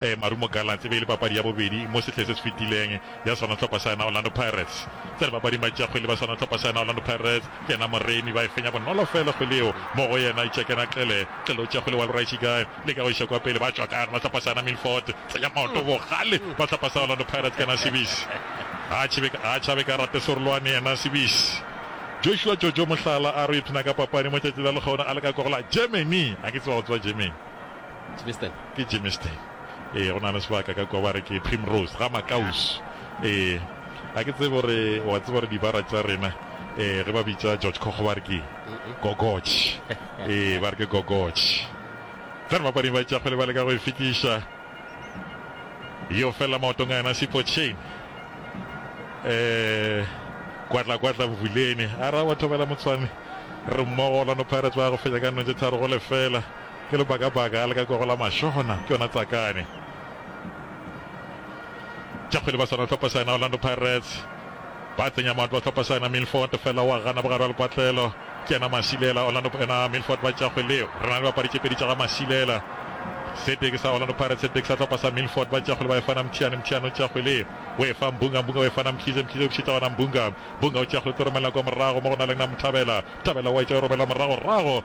Marumo Gallants e be e le papadi ya bobedi mo sehleng se se fetileng ya swanathlopha sa yona Orlando Pirates. Tsa dipapadi matši a kgwele ba swanathlopha sa yona Orlando Pirates ke yena Moremi ba e fenya bonolo fela kgwele yeo mo go yena Itšekena Xele Xelotša kgwele wa Luraisi Guy le ka go iša kwa pele ba tšwa ka gona hlopha sa yona Milford tsenya maoto bogale ba hlopha sa Orlando Pirates ke yena Sibisi ga a tšhabe ka rate Sorolwane yena Sibisi Joshua Jojo Mohlala a re o ipshina ka papadi mo tšatši la lekgaune a leka kwa go la Germany a ke tseba go tswa Germany. Ke Germiston. Ee, go na le sebaka ka kwa ba re ke Primrose, ga Makaus. Ee, ga ke tsebe gore o a tseba gore dibara tša rena ee ge ba bitša George Kgogo ba re ke Gogoch. Ee, ba re ke Gogoch. Fela bapading ba tša kgwele ba leka go e fetiša. Yo fela maotong a yena Sipo Chain. Ee, kwatla kwatla bofuleni. A ra wa thobela motswane. Re mmogo Orlando Pirates ba go fetša ka nno tše tharo go lefela. Ke lebakabaka a le ka kwago la mašona ke yona tsakane tša kgwele ba swana hlopha saena Orlando Pirates ba tsenya matlo hlopha saena Milford fela wa gana bogare wa lepatlelo ke yena Masilela Orlando ena Milford ba tša kgwele yeo re na le bapadi tše pedi tša ga Masilela se tee ke sa Orlando Pirates se tee ke sa hlopha sa Milford ba tša kgwele ba efana Mthiane Mthiane o tša kgwele o efa Mbunga Mbunga o efana Mkhize Mkhize o bušetša gona Mbunga Mbunga o tša kgwele tlo romelela kwa morago mo go na le na Mthabela Mthabela wa etša o romela morago rago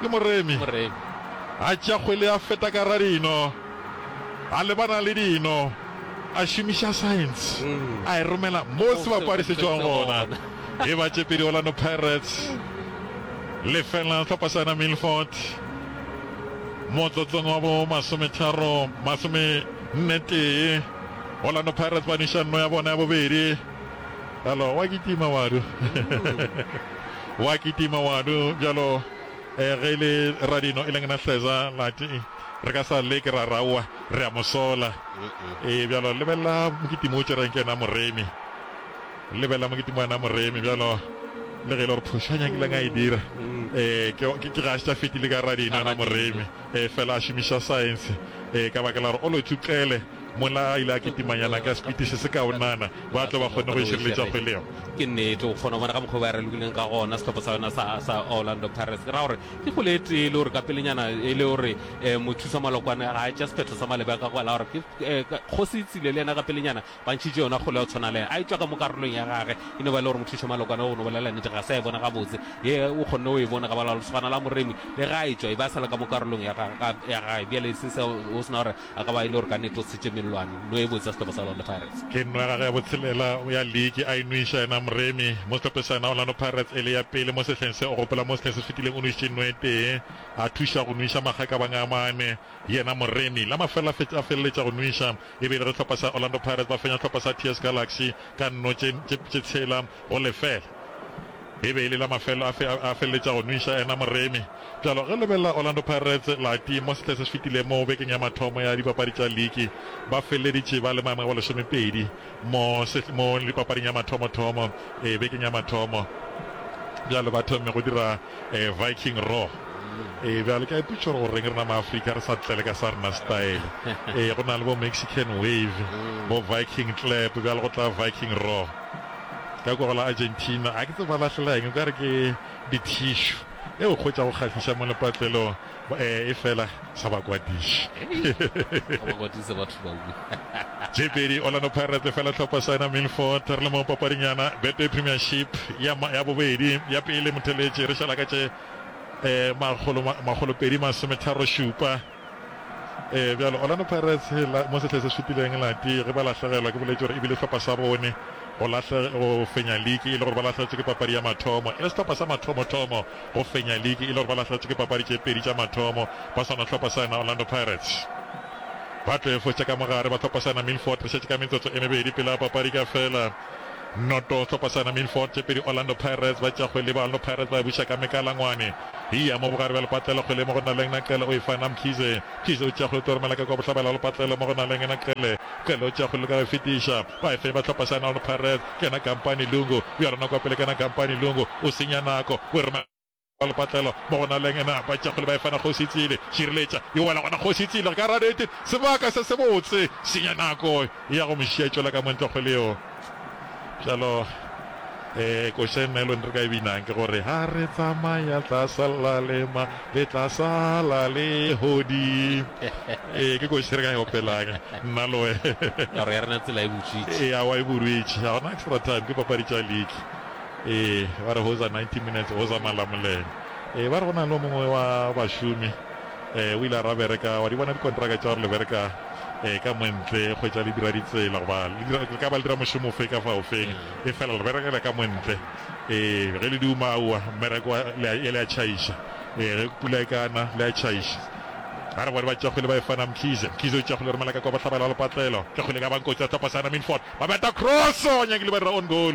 Ke moremi. A tšea kgwele a feta ka ra dino, a lebana le dino, a šomiša saense, a e romela mo sebapadi se tšwago gona. E ba tše pedi Orlando Pirates lefela hlopha sa yona Milford motlotlong wa bo masometharo masome nne tee. Orlando Pirates ba nweša nno ya bona ya bobedi. Hello, wa kitima wadu. Wa kitima wadu bjalo eh, ge le radino e leng na hleza lati re ka sa leke ra rawa re a mosola e bjalo lebella mokitimo o tšereng ke na moremi lebella mokitimo wa na moremi bjalo le ge e le gore phošo a nyakileng a e dira um ke ga se tša fetile ka radino na moremi um fela a šomiša science um ka baka la gore o lo tšukele Mola a ile a kitimanyana ka sepiti se sekaonana go a tlo ba kgone go e šireletša kgwele yeo. Ke nnete, o kgona go bona ka mokgwa o ba ralokileng ka gona sehlopha sa yona sa, sa Orlando Pirates. Ke ra gore ke kgwele e tee e le gore ka pelenyana e le gore eh, mothusa malokwane ga a tša sephetho sa malebe ka kwa la gore ke eh, kgosi tsile le yena ka pelenyana ba ntšhitše yona kgwele ya tshwana le a e tšwa ka mo karolong ya gage e no ba le gore mothusa malokwane go no bolela nnete ga sa e bona gabotse ye o kgonne o e bona ka ba la lesogana la moremi le ga a e tšwa e ba sa le ka mo karolong ya gage bjale se se o sena gore A ka ba e le gore ka nnete o tshitše mellwane no e botse ya sehlopha sa Orlando Pirates. Ke nno ya gagwe ya botshelela ya liki a e nwiša yena Mremi mo sehlophe sa yena Orlando Pirates e le ya pele mo sehleng se. O gopola mo sehleng se fetileng o nwišitše nno e tee a thuša go nwiša magakabang a mane yena Mremi. La mafelelo a fetša a feleletša go nwiša e be e le ge sehlopha sa Orlando Pirates ba fenya sehlopha sa TS Galaxy ka nno tše tše tshela go lefela. E be e le la mafelo afe a a feleletša go nwiša yena Moremi? Bjalo ge lebelo la Orlando Pirates la ti mo sehle se se fetileng mo bekeng ya mathomo ya dipapadi tša liki, ba feleleditše ba le maemong a bolesomepedi mo sehl mo dipapading ya mathomothomo e bekeng ya mathomo. Bjalo ba thomme go dira e Viking Roar. E bjalo ke a ipotšiša gore goreng rena Maafrika re sa tlele ka sa rena style. E go na le bo Mexican Wave, bo Viking Clap, bjalo go tla Viking Roar. Ka kwa go la Argentina, a ke tsebe ba lahlela eng, nkare ke dithishu. E o hwetša go kgahliša mo lepatlelong, e, efela sa ba kwadiše. Ga ba kwatise batho ba bue. Tše pedi Orlando Pirates lefela tlhopha Saina Milford. Re le mo papading yana Betway Premiership ya, ya bobedi. Ya pele Motheletši re šala ka tše, eh, makgolo, makgolo pedi masometharo šupa. Ee, bjalo Orlando Pirates la mo sehleng se šupileng la ti ge ba lahlegelwa ke boletše gore e bile sehlopha sa bone go lahle go fenya liki e le gore ba lahletše ke papadi ya mathomo e le sehlopha sa mathomothomo go fenya liki e le gore ba lahletše ke papadi tše pedi tša mathomo ba swana sehlopha sa yona Orlando Pirates. Ba tlo e fotša ka mo gare ba sehlopha sa yona Milford re šetše ka metsotso e mebedi pele ga papadi ka fela. Noto Hlopasana Milford tše pedi Orlando Pirates ba tša kgwele Baorlando Pirates ba e buša ka mekalangwane Hia mo bogare bja lepatlelo kgwele mo go Naleng Naqele o e fa na Mkhize Mkhize o tšea kgwele Tori Malaka kua bohlabela bja lepatlelo mo go Naleng Naqele Qele o tšea kgwele leka go e fetiša ba e fenya ba Hlopasana Orlando Pirates ke yena Kampani Lungu bjalo nako ya pele ke yena Kampani Lungu o senya nako o e romela Ka lepatlelo mo go na leng na, batšakgole ba efana kgoši Tsiile. Šireletša yo wela gona kgoši Tsiile ka radete, sebaka se sebotse, senya nako ya go mo šiya tšwela ka montlo kgole yo. Bjalo ee, koša e nelo re ka e binang ke gore ha re tsamaya tla sala lema le tla sala le hodi ee, ke koši re ka e opelang nna le wena. Toro ya rena tsela e butswitše. Ee, a wa e burwitše, ga gona extra time, ke papadi tša league. Ee, ba re hoza 90 minutes hoza Malamulele. Ee, ba re go na le o mongwe wa bašomi ee, o ile a ra bereka, wa di bona dikontraka tša gore le bereka ee, ka montle kgwetša le dira ditsela goba le dira, le ka ba le dira mošomo ofe ka fa ofeng ee, fela le berekela ka montle ee, ge le di uma aowa mmereko wa le a, le a tšhaiša ee, ge pula e ka na le a tšhaiša. Ba re bone ba tšakgwile ba efana Mkhize, Mkhize o tšakgwile re Malaka kwa bohlabela le patlelo, tšakgwile ka ba nkotsi a tlopa Sana Milford, ba beta cross nyakile ba dira on goal.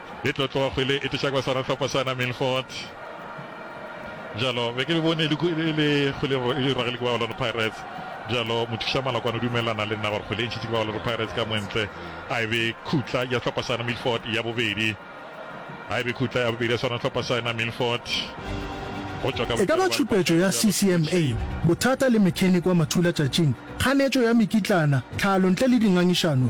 E tlo tloga kgwele e tliša kwa sona hlopha sa Naminfort. Bjalo, be ke le bone e le kgwele e dirwa ge le ke ba Orlando Pirates. Bjalo, mothuša Malokwane o dumelelana le nna gore kgwele e ntšhitše ke ba Orlando Pirates ka mwentle. A e be khutla ya hlopha sa Naminfort ya bobedi. A e be khutla ya bobedi ya sona hlopha sa Naminfort. Go tšwa ka. E ka ba tšhupetšo ya CCMA, bothata le mechanic wa mathula tšatšing, kganetšo ya mekitlana, tlhalo ntle le dingangišano,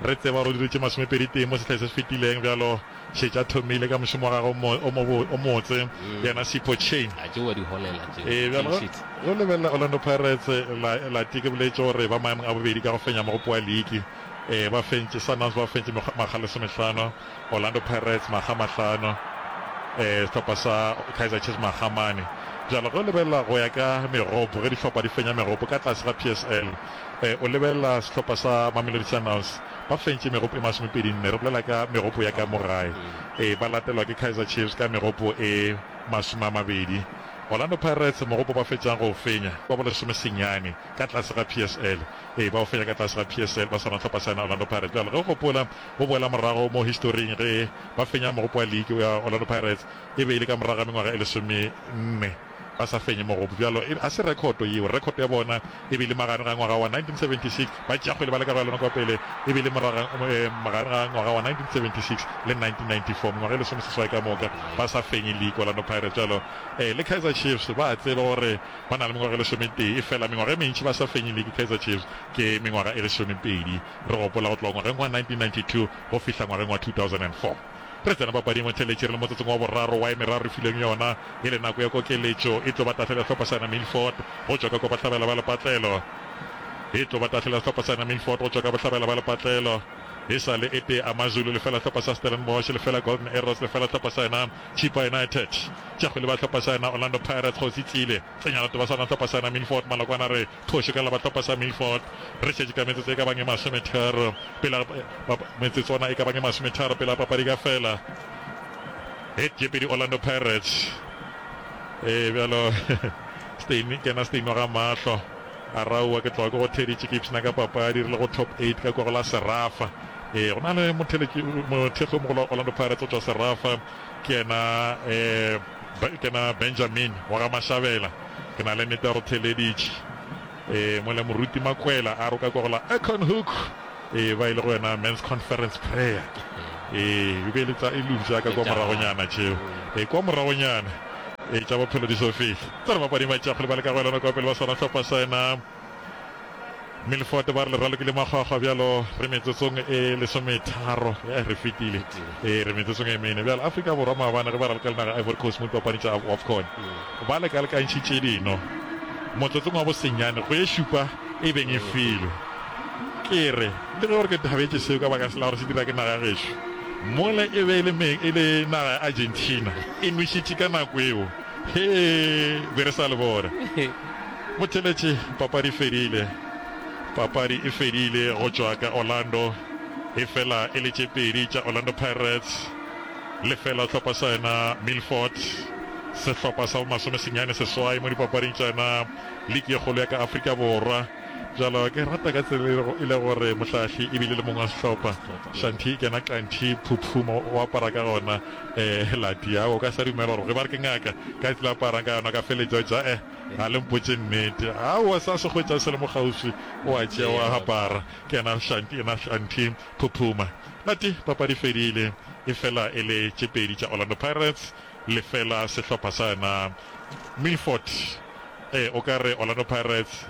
Re tseba gore o diretše masomepedi tee mo sehleng se se fetileng, bjalo šetše a thomile ka mošomo wa gagwe o mo o o motse, yena Sipho Chain. A tšewa diholela tšeo, Ee, bjalo clean sheet. go lebelela Orlando Pirates la late ke boletše gore ba maemong a bobedi ka go fenya mogopo wa liki. Ee, ba fentše, Sundowns ba fentše mekgwa makga a lesomehlano, Orlando Pirates makga a mahlano, ee, sehlopha sa Kaizer Chiefs makga a mane. Bjalo ge o lebelela go ya ka megopo, ge dihlopha di fenya megopo ka tlase ga PSL, o lebelela sehlopha sa Mamelodi Sundowns, ba fentše megopo e masomepedi nne, re bolela ka megopo ya ka mo gae, ee, ba latelwa ke Kaizer Chiefs ka megopo e masome a mabedi. Orlando Pirates mogopo ba fetšang go o fenya, ba bolesome senyane ka tlase ga PSL, ee, ba o fenya ka tlase ga PSL ba swana hlopha sena Orlando Pirates. Bjale ge o gopola, o boela morago mo historing ge ba fenya mogopo wa league wa Orlando Pirates, e be e le ka morago ga mengwaga e lesome nne. ba sa fenye mogopo bjalo e, a se rekhoto yeo, rekhoto ya bona e be le magareng ga ngwaga wa 1976, ba tšea kgwele ba leka go ya lona kwa pele, e be le moraga, eh, magareng ga ngwaga wa 1976 le 1994, mengwaga e lesomeseswai ka moka ba sa fenye league, Orlando Pirates bjalo eh, le Kaizer Chiefs ba a tseba gore ba na le mengwaga e lesometee, efela mengwaga e mentši ba sa fenye league, Kaizer Chiefs ke mengwaga e lesomepedi, re gopola go tloga ngwageng wa 1992 go fihla ngwageng wa 2004. Re tsena papading Mothelletši re le motsotsong wa boraro wa e meraro re filweng yona e le nako ya kokeletšo. E tlo ba tahlele sehlopha sa Milford go tšwa ka kwa bohlabela ba lepatlelo. E tlo ba tahlele sehlopha sa Milford go tšwa ka bohlabela ba lepatlelo. E sa le e tee Amazulu lefela sehlopha sa Stellenbosch lefela Golden Arrows lefela sehlopha sa yona Chippa United. Tša kgwele ba sehlopha sa yona Orlando Pirates Kgosi Tsile Tsenyalato ba swana sehlopha sa yona Milford Malokwane a re Kgoši ka Labatlhopa sa Milford, re šetše ka metsotso e ka bang e masometharo pele ga, metsotswana e ka bang e masometharo pele ga papadi ka fela. Head jeopardy Orlando Pirates. Ee, bjalo Steyn, ke yena Steyn wa ga Mahlo. A re aowa, ke tloga ke go theditše ke ipshina ka papadi re le go top eight ka kwa go la Serafa. Ee, go na le mothekgi mogolo wa Orlando Pirates o tšwa Serafa. Ke yena ee, ke na Benjamin wa ga Mashabela, ke na le nete ya go theleditše ee, mo le moruti Makwela a roka kwa go la Econhoek ee, ba ile go yena men's conference prayer ee, e be le tsa elupša ka kwa moragonyana tšeo ee, kwa moragonyana ee, tša bophelo di so fihle tsa re bapadi matšakgole ba le ka go elana kwa pele ba swana hlopha sa yena Milford ba re le ralokile makgwakgwa bjalo re metsotsong e lesometharo ya re fetile e re metsotsong e mene bjalo Afrika Borwa maabane ge ba raloka le naga Ivory Coast mo dipapadi tša AFCON ba lekalekantšhitše dino motlotsong wa bosenyane go e šupa e beng e filwe ke re le ge gore ke thabetše seo ka baka sela gore se dira ke naga gešo mole e be e le meng e le naga ya Argentina e nwešitše ka nako eo Hee be re sa le bona. Motheletši papadi e fedile. Papadi e fedile go tšwa ka Orlando e fela e le tše pedi tša Orlando Pirates lefela sehlopha sa yona Milford. Sehlopha sa bo masome senyane seswai mo dipapading tša yona liki ye kgolo ya ka Afrika Borwa. Bjalo ke rata ka tsela e le gore mohlahli e bile le mong wa sehlopha Shanti kena Qanti Phuphu mo o apara ka gona. Eh Lati aowa o ka sa dumela gore ge ba re ke ngaka ka tla aparang ka yona ka feletša ja eh ga le mpotše nnete aowa sa se hwetša se le mo kgauswi o a tšea wa apara ke ena shanti ena shanti phuphuma Lati papadi fedile e fela e le tše pedi tša Orlando Pirates le fela sehlopha sa yona Milford eh o ka re Orlando Pirates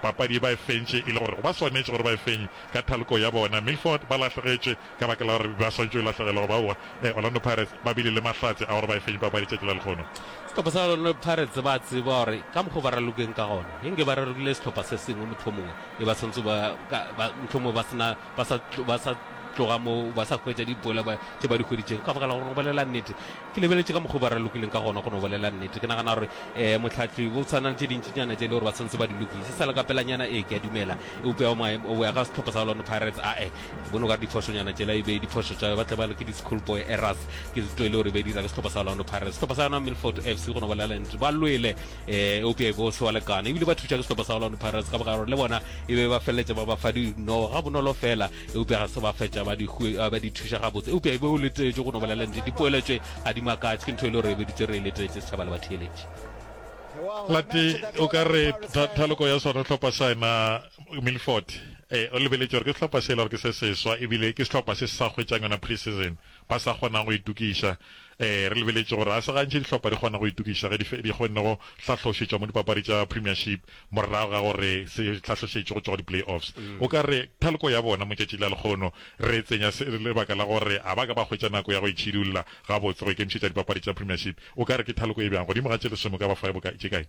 papadi ba e fentše e le gore ba swanetše gore ba e fenye ka thaloko ya bona Milford ba lahlegetše Ka baka la gore ba swantšwe lahlegelwa go ba aowa, Orlando Pirates ba bile le mahlatse a gore ba e fenye papadi tšatši la lekgono. Sehlopha sa Orlando Pirates ba a tseba gore ka mokgo ba ralokeng ka gona, e nke ba ralokile sehlopha se sengwe mohlomongwe e ba swantse ba ka ba mohlomongwe ba sena ba sa ba sa tloga mo ba sa hwetša dipoelo ba tše ba di hweditšego. Ka baka la gore go bolela nnete ke lebeletše ka mokgo ba ralokileng ka gona go no bolela nnete ke nagana gore eh mohlahli go tshwana le tše dintšinyana tše e le gore ba swantse ba di lokise sa le ka pelanyana ee ke a dumela eupša go ya ka sehlopha sa Orlando Pirates ae Bono ka diphosonyana tšela e be diphoso tša ba tle ba ke di-school boy errors ke zito e le gore be dira ke sehlopha sa Orlando Pirates sehlopha sa yona Milford FC go no ba lela ntse ba lwele eh eupša e bo se wa lekana ebile ba thuša ke sehlopha sa Orlando Pirates ka bogaro le bona e be ba feleletša ba ba fa dino ga bonolo fela eupša ga se ba fetša ba di ba di thuša ga botse eupša e be o letetše go no ba lela ntse dipoeletše a di makatše ke ntho e le gore e be ditse re e letetše setšhaba le batheeletše lati o ka re thaloko ya sona hlopha sa ena Milford e, o lebeletše gore ke sehlopha se e le gore ke se seswa ebile ke sehlopha se se sa hwetšang yona pre-season, ba sa kgonago go itokiša. E, re lebeletše gore ga se gantši dihlopha di kgona go itokiša ge di di kgonne go hlahlošetšwa mo dipapadi tša Premiership morago ga gore se hlahlošetšwe go tšwa go di-play-offs. O ka re thaloko ya bona mo tšatšing la lekgono re e tsenya se le lebaka la gore ga ba ka ba hwetša nako ya go itšhidulla gabotse go ikemišetša dipapadi tša Premiership. O ka re ke thaloko e bjang? Godimo ga tše lesome o ka ba fa bokae, tše kae?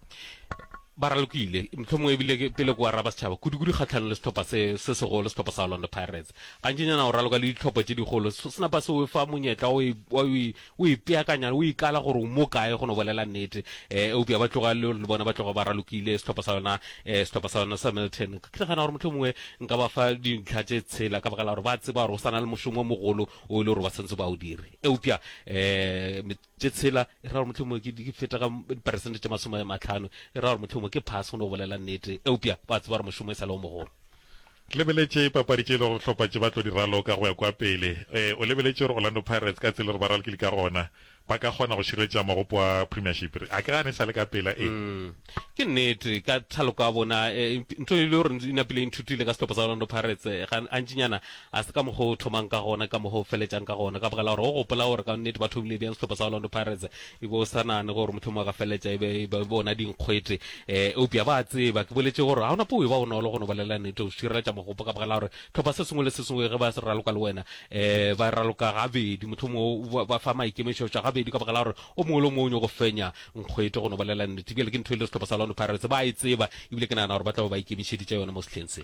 Ba ralokile, mohlomongwe e bile ke pele ke araba setšhaba, kudukudu kgahlanong le sehlopha se se segolo, sehlopha sa Orlando Pirates. Gantšinyana o raloka le dihlopha tše dikgolo, se napa se o fa monyetla wa go e, wa go e, wa go e peakanya, o ikala gore o mo kae, go no bolela nnete. Eh, eupša ba tloga le, le bona ba tloga ba ralokile, sehlopha sa yona, eh, sehlopha sa yona sa Milton. Ke nagana gore mohlomongwe nka ba fa dintlha tše tshela, ka baka la gore ba tseba gore go sa na le mošomo o mogolo o e le gore ba swanetse ba o dire. Eupša, eh, tše tshela, e ra gore mohlomongwe ke, ke feta ka diperesente tše masome a matlhano, e ra gore mohlomongwe ke phase go no bolela nnete, eupša ba tseba gore mošomo e sa le o mogolo. Lebeletše papadi tše e lego gore dihlopha tše ba tlo di raloka go ya kua pele. E, o lebeletše gore Orlando Pirates ka tsela e re ba ralokile ka gona, ba ka kgona go šireletša magopo a Premiership? A ke gane e sa le ka pela e. Ke nnete, ka thaloko ya bona, e, ntho e le gore e napile e nthutile ka sehlopha sa Orlando Pirates, ga, gantšinyana Ga se ka mokgwa o thomang ka gona, ke ka mokgwa o feletšang ka gona. Ka baka la gore o gopola gore ka nnete ba thomile bjang sehlopha sa Orlando Pirates, e be o sa nagane gore mohlomongwe a ka feletša e be e ba bona dinkgwete. E, eupša ba a tseba, ke boletše gore ga ona po e ba bonolo go no bolelela nnete, go šireletša mogopo, ka baka la gore hlopha se sengwe le se sengwe ge ba se raloka le wena, e, ba e raloka gabedi, mohlomongwe o ba fa maikemišetšo a gabedi, ka baka la gore o mongwe le o mongwe o nyoko fenya nkgwete, go no bolelela nnete. Bjale ke ntho e le sehlopha sa Orlando Pirates ba a e tseba, ebile ke nagana gore ba tla be ba ikemišeditše yona mo sehleng se.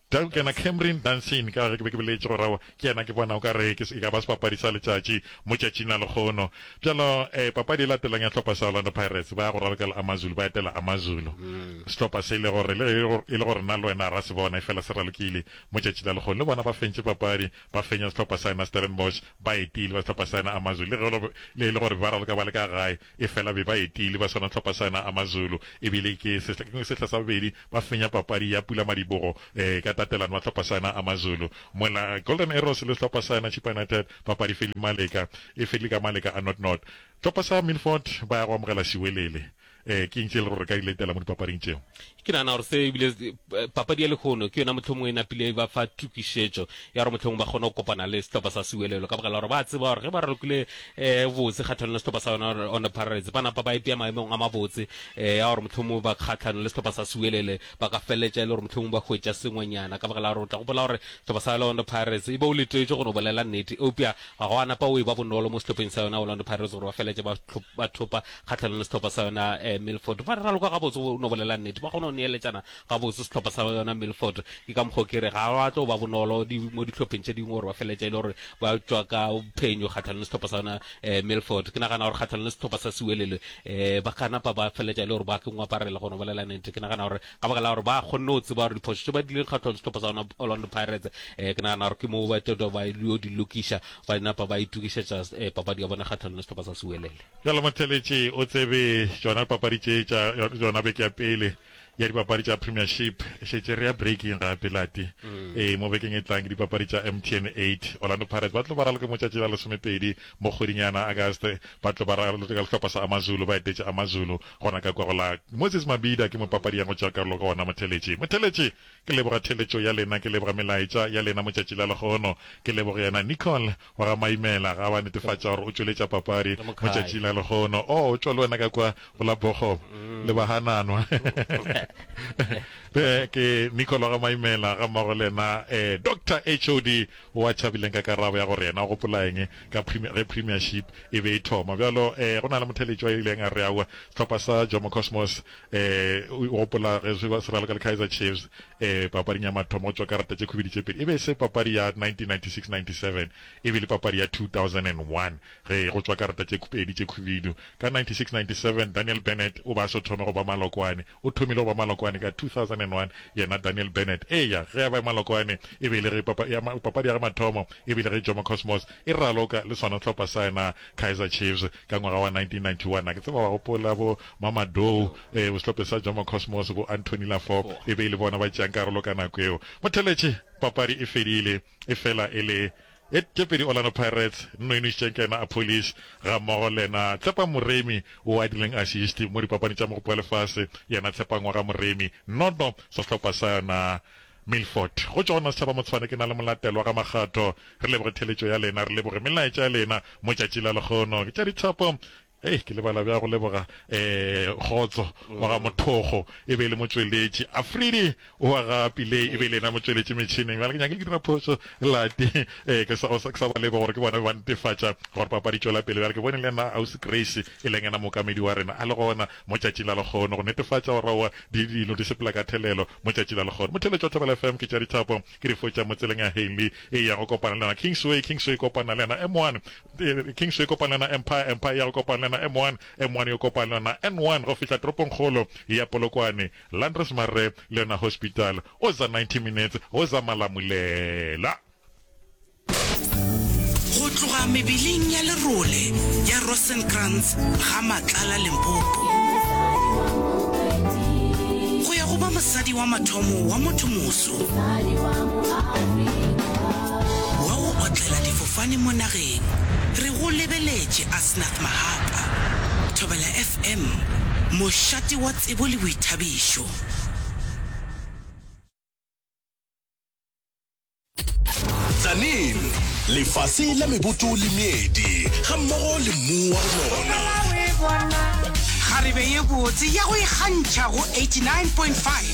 Doug yena Camryn Dunsin, ka ge ke be ke boletše gore awa ke yena, ke bona o ka re ke, e ka ba sebapadi sa letšatši mo tšatšing la lekgono. Bjalo, ee, papadi e latelang ya sehlopha sa Orlando Pirates, ba ya go ralokela Amazulu, ba etela Amazulu, sehlopha se e le gore, le ge e le gore nna le wena ra se bona, efela se ralokile mo tšatšing la lekgono. Le bona ba fentše papadi, ba fenya sehlopha sa yena Stellenbosch, ba etile ba sehlopha sa yena Amazulu, le ge le e le gore be ba raloka ba le ka gae, efela be ba etile ba swana sehlopha sa yena Amazulu, e bile ke sehla sa bobedi Ba fenya papadi ya Pulamadibogo ka tatelano ya sehlopha sa yona AmaZulu, mola Golden Arrows le sehlopha sa yona Chippa United papadi feli Maleka e fedile ka maleka a not-not. Sehlopha sa Milford ba ya go amogela Siwelele. Ke eng se e lego gore re ka di letela mo dipapading tšeo? Ke nagana gore se ebile papadi ya lehono ke yona mohlomongwe e napile e ba fa tokišetšo ya gore mohlomongwe ba kgone go kopana le sehlopha sa Siwelele ka baka la gore ba tseba gore ge ba rokile e botse kgatlhanong le sehlopha sa yona Orlando Pirates. Ba napa ba ipea maemong a mabotse e a gore mohlomongwe ba kgatlhanong le sehlopha sa Sewelele ba ka feleletša e le gore mohlomongwe ba hwetša sengwenyana ka baka la gore o tla gopola gore sehlopha sa Orlando Pirates e be o letetše go no bolela nnete eupša ga go a napa o e ba bonolo mo sehlopheng sa yona Orlando Pirates gore ba feleletše ba ba thopa kgatlhanong le sehlopha sa yona um Milford ba raloka gabotse go no bolela nnete ba kgona go neeletšana Gabotse sehlopha sa yona Milford ke ka mokgwa o ke re ga wa tlo ba bonolo di mo dihlopheng tše dingwe gore ba feletša e le gore ba tšwa ka phenyo kgatlhanong le sehlopha sa yona eh, Milford ke nagana gore kgatlhanong le sehlopha sa Sewelele eh, ba ka napa ba feletša e le gore ba ke ngwaparela go no bolela nete ke nagana gore ka baka la gore ba kgonne go tseba gore diphošo tše ba dileng kgatlhanong le sehlopha sa yona Orlando Pirates eh, ke nagana gore ke moo ba tlo ba yo di lokiša ba napa ba itukišetša eh, papadi ya bona kgatlhanong le sehlopha sa Sewelele bjalo motheletši o tsebe tšona papadi tše tša yona beke ya pele ya dipapadi tša Premiership e šetše re ya breaking gape Lati. Ee, mo bekeng e tlang ke dipapadi tša MTN 8. Orlando Pirates ba tlo ba raloka motšatši la lesomepedi mo kgweding yana August, ba tlo ba raloka ka lehlopha sa AmaZulu, ba etetše AmaZulu gona ka kwa go la Moses Mabhida ke mo papadi ya go tšea karolo gona mo Theletše. Motheletše, ke leboga theletšo ya lena, ke leboga melaetša ya lena motšatši la lehono, ke leboge yena Nicole Wa ga Maimela ga wa netefatša gore o tšweletša papadi mo tšatšing la lehono. Oh, o tšwa le wena ka kwa go la Bochob le ba hananwa. Re ke Nicole wa ga Maimela ga mmogo le yena eh, Doctor HOD o a tšhabileng ka karabo ya gore yena o gopola eng ka Premier, ge Premiership e be e thoma. Bjalo eh, go na le motheletši wa ileng a re aowa, sehlopha sa Jomo Cosmos eh, o gopola ge se raloka le Kaizer Chiefs Ee, papading ya mathomo go tšwa karata tše khubedi tše pedi. E be e se papadi ya 1996-97, e be e le papadi ya 2001, ge go tšwa karata tše pedi tše khubidu. Ka 96-97, Daniel Bennett o be a so thome go ba malokwane. O thomile go ba malokwane ka 2001, yena Daniel Bennett. Eya, ge a ba malokwane, e be e le ge papa, ya, papadi ya ge mathomo, e be e le ge Jomo Cosmos e raloka le sona sehlopha sa yena Kaizer Chiefs. Ka ngwaga wa 1991, a ke tseba wa gopola, bo Mamadou, ee, bosehlophe sa Jomo Cosmos, bo Anthony Lafop, e be e le bona ba tšeang karolo ka nako yeo. Motheletši, papadi e fedile, efela e le e tše pedi Orlando Pirates, Nnoinwi Sitšenkena a Police, gammogo le yena Tshepa Moremi o adileng asiste mo dipapading tša Mogopo wa Lefase, yena Tshepa Ngwaga Moremi, noto sa sehlopha sa yona Milford, go tšona Setšhabamotshwane ke na le molatelo wa ga Makgatho. Re leboge theletšo ya lena, re leboge melaetša ya lena mo tšatši la lekgono. Ke tša dithapo, hei ke lebala bjang go leboga um Kgotso wa ga Mothokgo e be e le motšweletši, Afridi o wa ga Pillay e be e le yena motšweletši metšhineng. Bjale ke nyakile ke dira phošo lati um ke sa ke sa ba leboga gore ke bona ba netefatša gore papadi e tšwela pele. Bjale ke bone le yena Ausi Grace e leng yena mookamedi wa rena a le gona, Mo tšatši la lekgono go netefatša go raua di dilo di sepela ka thelelo mo tšatši la lekgono mo theletšo Thobela FM ke tša dithapo ke di fotša mo tseleng ya Hailey e ya go kopana le yena Kingsway Kingsway kopana le yena M1 Kingsway kopana le yena Empire Empire ya go kopana le yena M1 M1 yo kopana le yena N1 go fihla toropong kgolo ya Polokwane Landres Marre le yona Hospital o za 90 minutes go za Malamulela. Go tloga mebeleng ya lerole ya Rosenkrantz ga Matlala Limpopo, go ya go ba mosadi wa mathomo wa motho moso wa go otlela difofane mo nageng, re go lebeletše Asnath Mahapa, Thobela FM, mošate wa tsebo le boithabišo. Tsanin, lefase la meboto le meedi ga mmogo le mmu wa lona. Kgarebe ye botse ya go ikgantšha go 89.5.